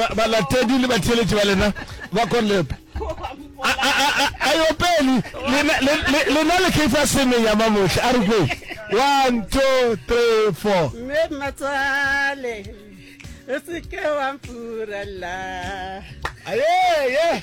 ba- balatedi le batheeletši ba lena ba konepe A- a- a- a- a yo pele lena le- le- lena le keifa seme ya mamohle a re kwe one two three four mme mmatsale o se ke wa mpurella Aye, ye.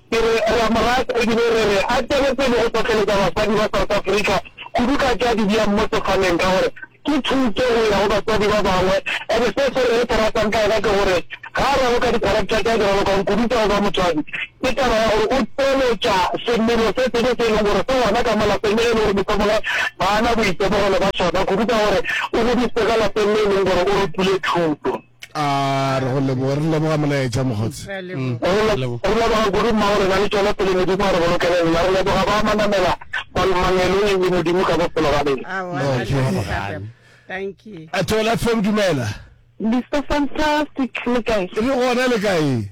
Ke re re a mo rata e bile re re a tšwele pele go hlohleletša basadi ba South Africa kudu ka tša dibjang mo sefaneng ka gore ke thuto go ya go batswadi ba bangwe and se se re se ratang ka yena ke gore ga a raloka di-character tša di ralokang kudu tša go ba motswadi ke taba ya gore o tšweletša semelo se sebe se e leng gore se gona ka mo lapeng le ge e le gore mohlomongwe ga a na boitemogelo ba sona kudu ka gore o godisitse ka lapeng le e leng gore o rutile thuto a re go leboga re leboga molaetša mokgotsi mm. re leboga kudu mmago rena le tšwele pele modimo a re bolokele rena re leboga ba manamela balomangelong le modimo ka bophelo ba rena a tola fem dumela mr fantastic le kae re gona le kae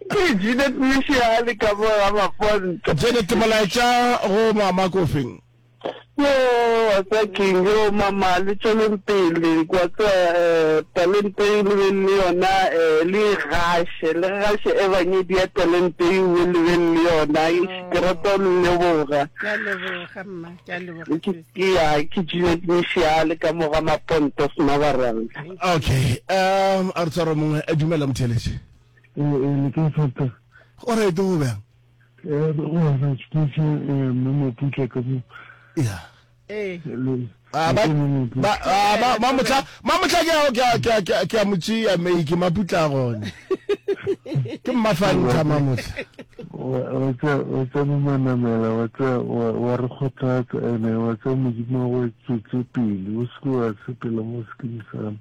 Ke Janet Mishihali ka mo ga Maponto. Janet, molaetša go mama ko feng? Yo, wa tseba keng, yo mama le tšweleng pele, kwa tseba um talenteng le beng le yona, um le e gaše, le gaše ebangedi ya talente e uwe le beng le yona. Eish, ke rata go le leboga. Ke a leboga mma, ke a leboga Ke, sweet. ke ya, ke Janet Mishihali ka mo ga Maponto Smabarang. Okay, um a re tshwara mongwe, dumela motheeletši. Eh, eh, le kae Pastor? O right go bjang? Eh, re go hana tšhutše eh, mme Maputla ka mo. Ya. Eh. Le- Ah, ba- le mme Maputla. ba- ah, ba- ba motla ba motla ke a- ke a- ke a- ke a- ke a motšea mei ke maputla gone ke mmafantha mamotla Wa- wa tsa- wa tsa momanamela wa tsa- wa wa re kgothatsa ene wa tsa modimo wa go tswetse pele o seke wa sepela mo sekeng sana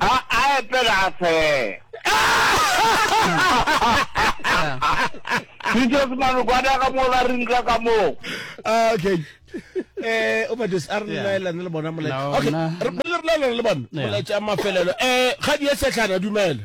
A a epela a fela. Teachers manu kwana ka mo la rinka ka mo. Ah, okay. Eh, o bates a re laela le bona molaetsa. Okay, re le laela le bona molaetsa mafelelo. Eh, ga di ya setlhana dumela.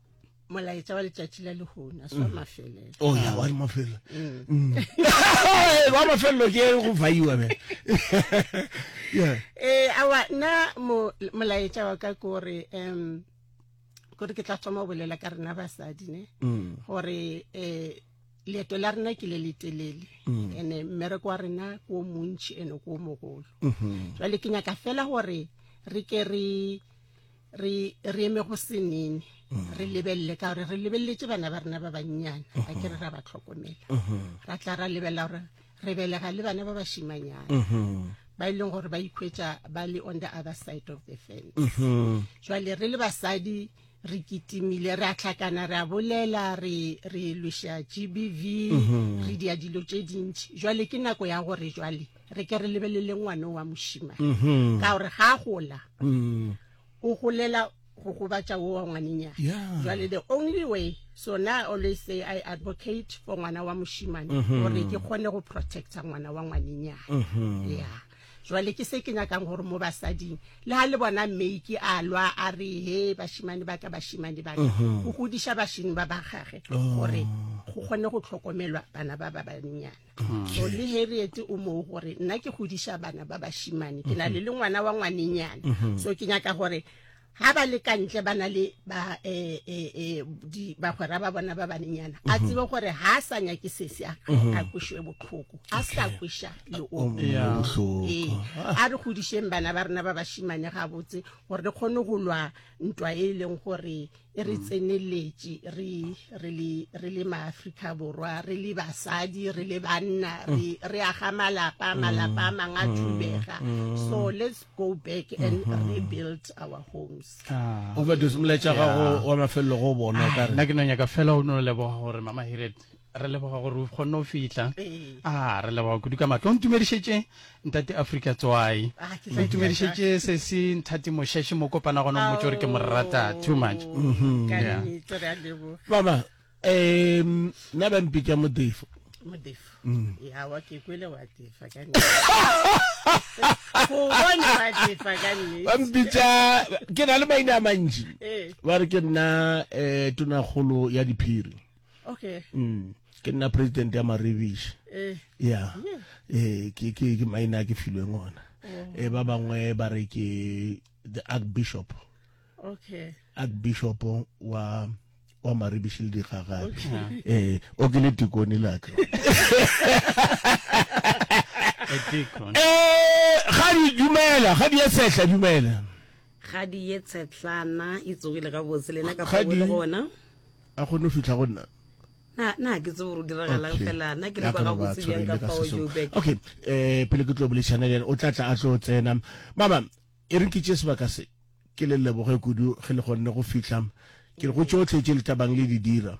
molaetša wa letšatši la lehona swa mm. mafelelo o oh, ya wa mafelelo mm. mm. wa mafelelo ke go faiwa be ee awa nna molaetša wa ka ke gore um kore ke tla thoma go bolela ka rena basadi ne gore um leeto la rena ke le le telele ande mmereko wa rena ke o montšhi ande ke o mogolo mm-hmm. jale ke nyaka fela gore re ke re re re eme go senene mm. re lebelele ka gore re lebeletse bana ba rena ba bannyane a mm-hmm. ke re ra ba tlhokomela mm-hmm. ra tla ra lebelela gore re belega le bana ba bashimanyana mm-hmm. ba e leng gore ba ikhwetsa ba le on the other side of the fence jwale re le basadi re kitimile re a tlhakana re a bolela re re lwesha gbv re dia dilo tse dintšhi jwale ke nako ya gore jwale re ke re lebelele ngwane wa mošima mm-hmm. ka gore ga gola mm. o golela go gobatša wo wa ngwanenyana jale the only way so na always say i advocate for ngwana wa mošimane mm-hmm. gore ke kgone go protecta ngwana wa ngwanenyana mm-hmm. ya jale ke se ke nyakang gore mo basading le ga le bona mmeiki a lwa a re he bashimane baka bashimane baka go godiša bashini ba ba gage oh. gore go kgone go tlhokomelwa bana ba ba bannyane so le harriet o moo gore nna ke godiša bana ba bashimane ke na le le ngwana wa ngwanenyana mm-hmm. so ke nyaka gore ha ba le kantle ba na le ba eh eh eh di ba gora ba bona ba banenyana a mhm. tsebe gore ha sa nya ke sese a mhm. a kushwe botlhoko a sa kusha le o oh, botlhoko eh, a re godisheng bana ba rena ba bashimane ga botse gore re khone go lwa ntwa e leng gore e re tseneletše re re le re le maafrika borwa re le basadi re le banna re re aga malapa malapa a mangwe a thubega so let's go back and rebuild our homes Ah. overdose molaetša gago wa mafelelo go bona o ka re nna ke no nyaka fela o no leboga gore mama hiret re leboga gore o kgonne go fihla a ah, re leboga kudu ka matlo o ntumedišetše ntate afrika tswai ah, o ntumedišetše se se nthati mošešhe mo kopana gona o motse gore ke morata too much mhm. mama um nna ba mpitša modefo modefo mm. ya wa ke kwele wa defa ka bampitsa ke na le maina a mantši ba re ke nna um tonakgolo ya diphiri okay mm ke nna president ya maribish eh yeah eh ke ke ke maina ke filweng ona oh. eh ba bangwe ba re ke the archbishop okay archbishop wa wa maribish le digagabi eh o ke le tikone la ka eh ga di dumela ga di ya sehla dumela ga di ye tshetlana e tsogile ga botse lena ka fa gona a kgone go fitlha go nna na ke tsebo gore diragalang fela na ke le kwa gabotse bjang ka fao joburg okay um pele ke tlo bolešana le ene o tla tla a tlo tsena mama e reng ke tše sebaka se ke le leboge kudu ge le kgonne go fitlha ke go tšotlhe tše le tabang le di dira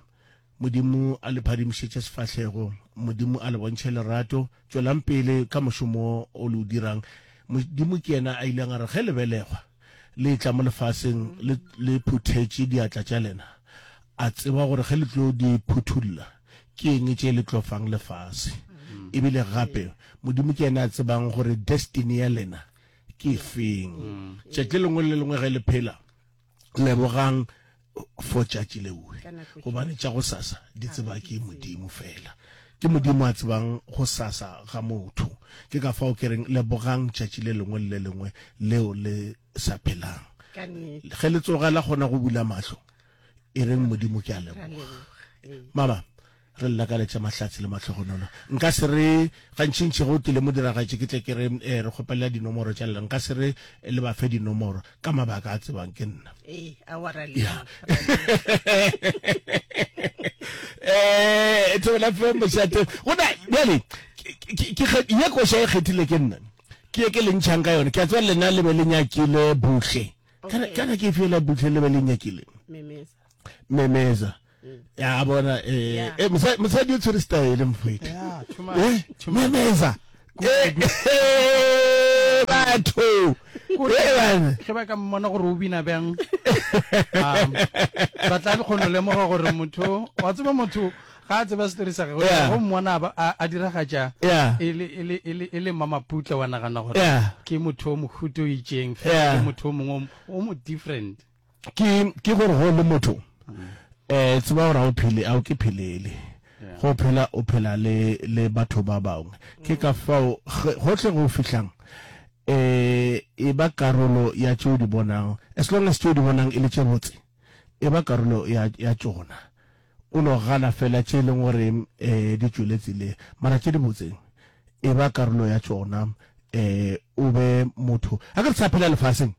modimo a le phadimišetše sefahlego modimo a le bontšhe lerato Tšwelang pele ka mošomo o le o dirang. Modimo ke yena a ileng a re, Ge lebelegwa le etla mo lefaseng le, le phuthetše diatla tša lena, A tseba gore ge le tlo di phuthulla, ke eng tše le tlo fang lefase. E bile gape, Modimo ke yena a tsebang gore destiny ya lena ke efeng. Tšatši le lengwe le le lengwe ge le phela, lebogang for tšatši leue gobane tša go sasa di tseba ke modimo fela ke modimo a tsebang go sasa ga motho ke ka fao ke reng lebogang tšatši le lengwe le le lengwe leo le sa phelang ge le tsogela kgona go bula mahlo e reng modimo ke a leboga mama Ge le lakaletša mahlatse le mahlogonolo, nka se re, Gantšintši ge o tlile modiragatši ke tle ke re, Ee, re kgopelela dinomoro tša lena, nka se re le ba fe dinomoro, ka mabaka a tsebang ke nna. Ee, aowa, ra le Ya. Ee, thobela fem mošate. Go na, bjale, ke- ke- ke- ke kge- ye koša e kgethile ke nna. Ke ye ke le ntšhang ka yone. Ke a tseba lena le be le nyakile Buhle. Kana, Okay. kana ke efe yela Buhle le be le nyakile? Memeza. memeza ya bona eh, yeah. eh, mosadi o tshwere style mfwete yeah, eh, memeza eh, eh, batho ge ba ka mmona gore o bina bjang um, ba tla le kgono lemoga gore motho wa tseba motho ga a tseba setori sa gagwe go mmona a diragatša e le mamaputle wa nagana gore ke motho o mohuto o itseng ke motho o mongwe o mo different ke ke gore go le motho eh tseba gore o phele a o ke phelele go phela o phela le le batho ba bangwe ke ka fao gohle go fihlang eh e ba karolo ya tšeo di bonang as long as tšeo di bonang e le tše botse e ba karolo ya ya tsona o no gana fela tše e leng gore eh di tšweletse le mara tše di botseng e ba karolo ya tsona eh o be motho a ka re sa phela lefaseng